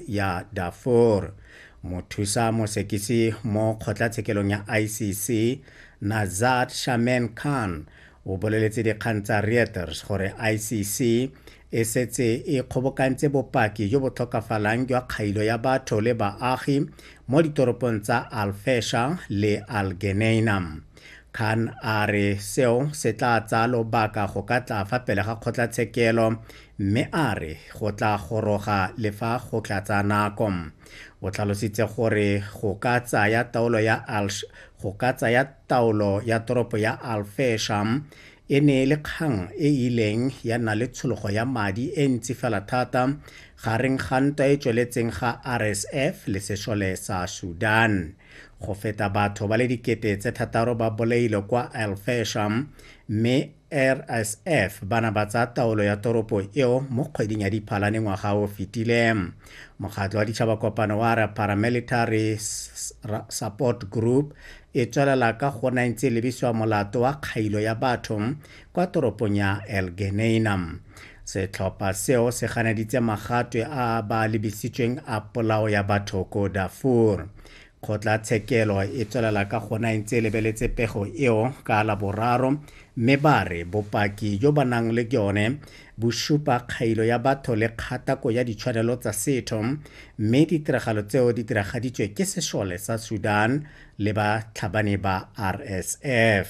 ya Darfur. Mothusa mosekisi mo kgotlatshekelong ya ICC, Nazat Shamen Khan, o boleletse dikgang tsa Reuters gore ICC e setse e kgobokantse bopaki jo bo tlhokafalang jwa kgailo ya batho le baagi mo ditoropong tsa Al-Fesha le Al-Geneina. Khan a re seo se tla tsaya lobaka go ka tla fa pele ga kgotlatshekelo mme a re go tla goroga le fa go tla tsaya nako. O tlhalositse gore go ka tsaya taolo ya Al go ka tsaya taolo ya toropo ya Al Fesham e ne e le kgang e e ileng ya nna le tshologo ya madi e ntsi fela thata gareng ga ntwa e tsweletseng ga RSF le sešole sa Sudan. Go feta batho ba le dikete tse thataro ba bolailwe kwa Al Fesham mme RSF ba na ba tsa taolo ya toropo eo mo kgweding ya Diphalane ngwaga o fetile. Mokgatlo wa Ditšhaba Kopano wa re Paramilitary Support Group e tswelela ka go na ntse e lebisiwa molato wa kgailo ya batho kwa toropong ya El Geneina. Setlhopha seo se ganeditse magatwe a ba lebisitsweng a polao ya batho ko Darfur. Kgotlatshekelo e tswelela ka gona e ntse e lebeletse pego eo ka Laboraro mme ba re bopaki jo ba nang le jone bo supa kgailo ya batho le kgatako ya ditshwanelo tsa setho mme ditiragalo tseo di diragaditswe ke sešole sa Sudan le batlhabani ba RSF.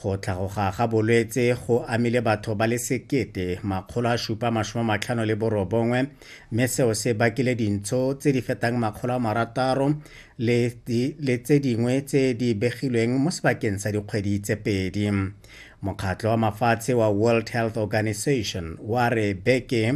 Go tlhagoga ga bolwetse go amile batho ba le sekete makgolo a supa masome matlhano le borobongwe mme seo se bakile dintsho tse di fetang makgolo a marataro le, le tse dingwe tse di begilweng mo sebakeng sa dikgwedi tse pedi mokgatlho wa mafatshe wa world health organization wa re beke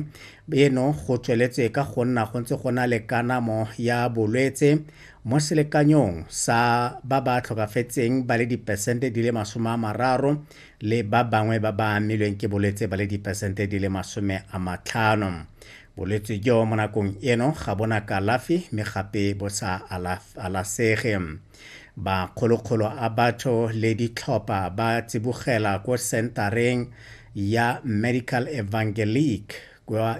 eno go tsweletswe ka go nna go ntse go na le kanamo ya bolwetse Mo selekanyong sa ba ba tlhokafetseng ba le dipesente di le masome a mararo le ba bangwe ba ba amilweng ke bolwetse ba le dipesente di le masome a matlhano. Bolwetse jo mo nakong eno ga bona kalafi mme gape bo sa alasege. Makgolokgolo a batho le ditlhopha ba tsibogela ko sentareng ya Medical Evangelique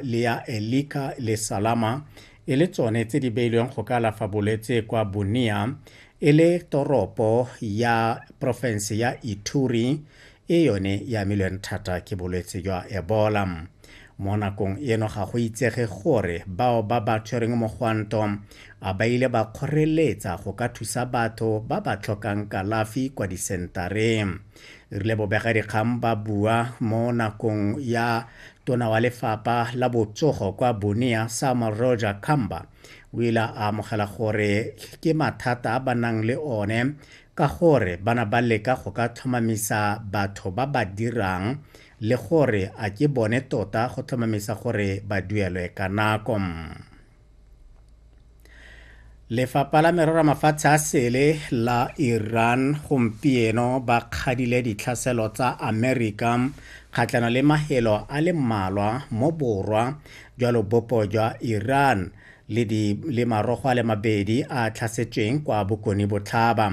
le ya Elika le Salama e le tsone tse di beilweng go ka alafa bolwetse kwa Bunia e le toropo ya porofense ya Ituri e yone ya amilweng thata ke bolwetse jwa Ebola. Mo nakong eno ga go itsege gore bao ba ba tshwereng mogwanto a ba ile ba kgoreletsa go ka thusa batho ba ba tlhokang kalafi kwa disentareng. re rile bobegadikgang ba bua mo nakong ya tona wa lefapa la botsogo kwa bonea sama roja kamba o ile a amogela gore ke mathata a ba nang le one ka gore bana ba leka go ka tlhomamisa batho ba ba dirang le gore a ke bone tota go tlhomamisa gore ba duelwe ka nako lefapha la merero mafatshe a sele la iran gompieno ba kgadile ditlhaselo tsa amerika kgatlhano le mahelo a le mmalwa mo borwa jwa lobopo jwa iran le, di, le marogo a le mabedi a tlhasetsweng kwa bokone botlhaba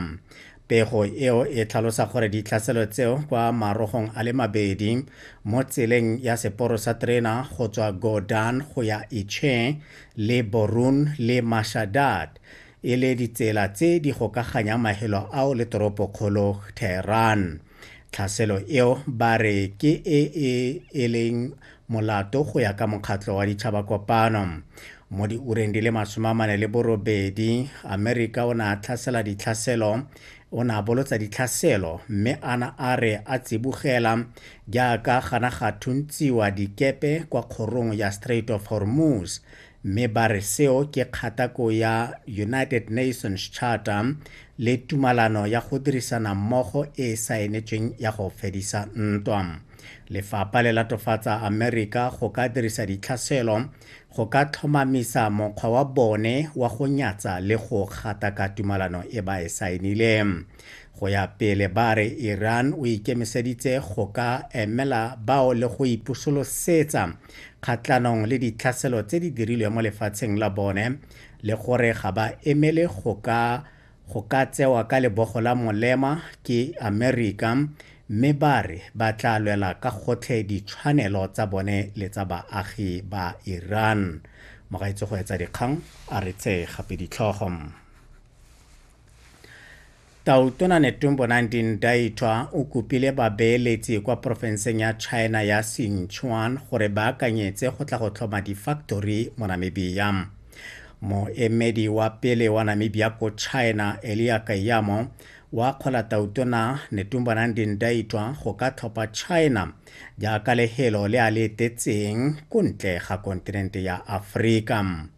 Pego eo e tlhalosa gore ditlhaselo tseo kwa marogong a le mabedi mo tseleng ya seporo sa terena go tswa Godan go ya Iche le Borun le Mashadad e le ditsela tse di gokaganyang mahelo ao le toropokgolo Tehran. Tlhaselo eo ba re ke e e eleng molato go ya ka mokgatlho wa ditšhabakopano. Mo diureng di le masome a mane le borobedi, Amerika o ne a tlhasela ditlhaselo o ne a bolotsa ditlhaselo mme a na a re a tsibogela jaaka gana ga thuntsiwa dikepe kwa kgorong ya Strait of Hormuz mme ba re seo ke kgatako ya United Nations Charter le tumalano ya go dirisana mmogo e e saenetsweng ya go fedisa ntwa. Lefapha le latofatsa Amerika go ka dirisa ditlhaselo go ka tlhomamisa mokgwa wa bone wa go nyatsa le go gataka tumalano e ba e saenileng. Go ya pele ba re Iran o ikemiseditse go ka emela bao le go ipusolosetsa kgatlhanong le ditlhaselo tse di dirilwe mo lefatsheng la bone le gore ga ba emele go ka go ka tsewa ka lebogo la molema ke Amerika mme ba re ba tla lwela ka gotlhe ditshwanelo tsa bone le tsa baagi ba Iran. Mogaitse go etsa dikgang a re tse gape ditlhogo. Tautona Netumbo Nandini Ndaitwa o kopile babeeletsi kwa porofenseng ya China ya Sichuan gore ba akanyetse go tla go tlhoma difaktori mo Namibia. Moemedi wa pele wa Namibia ko China, Elia Kayamo, wa akgola Tautona Netumbo Nandini Ndaitwa go ka tlhopha China jaaka lehelo le a le etetseng ko ntle ga kontinente ya Aforika.